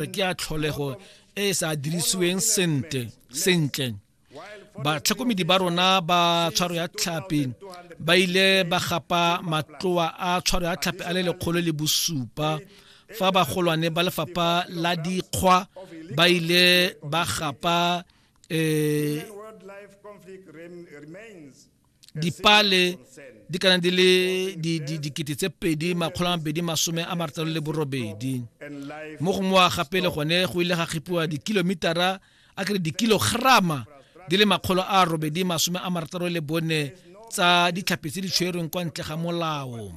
re ke ya tlholego e e sa dirisiweng sente sentle batlhokomedi ba rona ba tshwaro ya tlhapi ba ile ba gapa matloa a tshwaro ya tlhapi a le lekgolo le bosupa fa bagolwane ba lefapha la dikgwa ba ile ba gapa um dipale di kana di le dikete tse pedi makgolo a mabedi masome a marataro le borobedi mo gongwe wa gape le gone go ile ga kgipiwa dikilomitara a kere dikilograma di le makgolo a robedi masome a marataro le bone tsa ditlhapi tse di tshwerweng kwa ntle ga molao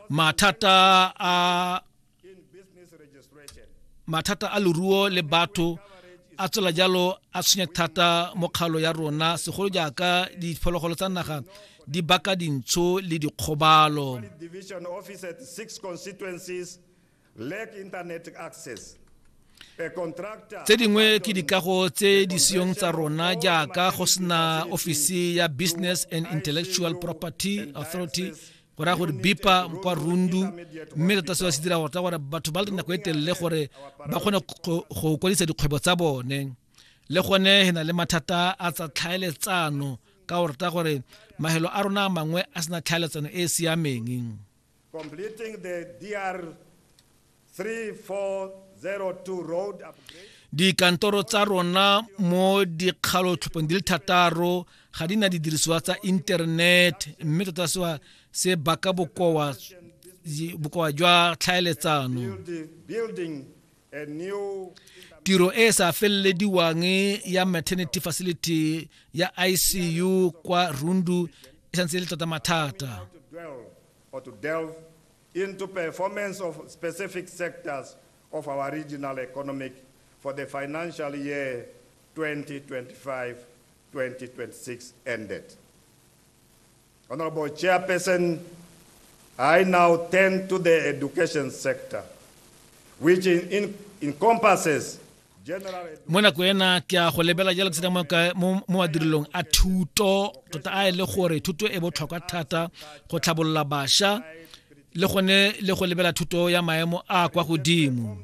mathata a mathata a leruo le batho a tswela jalo a tshwenya thata mo kgalo ya rona segolo jaaka diphologolo tsa naga di baka dintsho le dikgobalo tse dingwe ke dikago tse di seyong tsa rona jaaka go sena ofisi ya business and intellectual property authority go raya gore bipa kwa rundu mme tota se ba se dira gorta gore batho ba le nako e telele gore ba kgone go kwadisa dikgwebo tsa bone le gone he na le mathata a tsa tlhaeletsano ka gorta gore mahelo a rona mangwe a sena tlhaeletsano e e siameng Dikantoro tsa rona mo dikgalotlhopong di le thataro ga di na didirisiwa tsa internet mme tota sewa se baka bokowa jwa tlhaeletsano tiro e e sa felelediwang ya maternity facility ya icu kwa rundu e santse e le tota mathata into performance of specific sectors of our regional economic for the financial year 2025-2026 ended. Honourable Chairperson, I now turn to the education sector, which in, in, encompasses mo nako ena ke a go lebela jalo ke sena mo madirilong a thuto tota a e le gore thuto e botlhokwa thata go tlhabolola bašwa le gone le go lebela thuto ya maemo a kwa godimo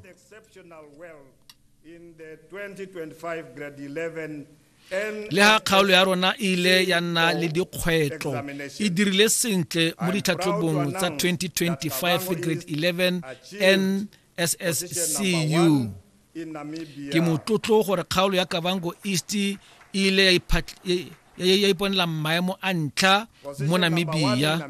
le ga kgaolo ya rona e ile ya nna le dikgwetlho e dirile sentle mo ditlhatlhobong tsa 2025 grade 11 nsscu ke motlotlo gore kgaolo ya kavango east e ile ya iponela maemo a ntlha mo namibia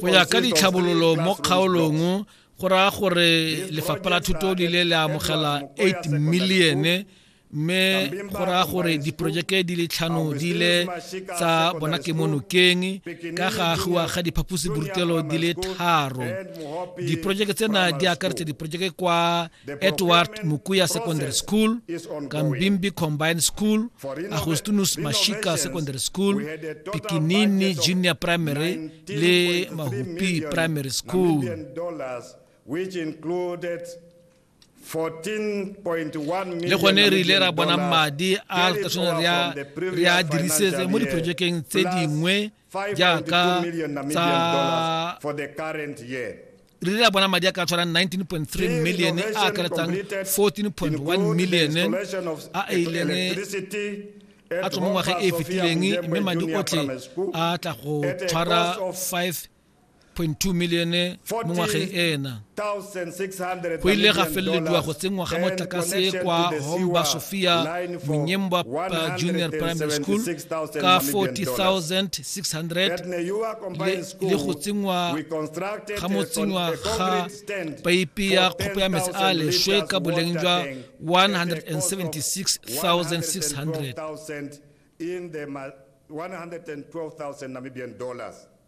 go ya ka ditlhabololo mo kgaolong go raya gore lefapha la thuto di ile le amogela 8 millione mme go raya gore diporojeke di le tlhano di ile tsa bona ke mo nokeng ka ga agiwa ga diphaposiborutelo di le tharo diporojeke tsena di akaretsa diporojeke kwa Edward Mukuya Secondary School, Kambimbi Combined School, Agostinus Mashika Secondary School, Pikinini Junior Primary le Mahupi Primary School. Which included le gone re ile ra bona madi a re a dirisetse mo diprojekeng tse dingwe jaaka tsa re re a bona madi a ka tshwarang 19.3 million a akaretsang 14.1 million a a ileng a tswa mo ngwageng e e fetileng mme madi otlhe a tla go tshwara 5 1.2 milione mo ngwageng ena. Go ile ga felelediwa go tsenngwa ga motlakase kwa Homba Sophia Monyembwa Junior Primary School ka 40600 le go tsenngwa ga motsenngwa ga paipi ya kgopo ya metsi a leshwe ka boleng jwa 176600 in the 112,000 Namibian dollars.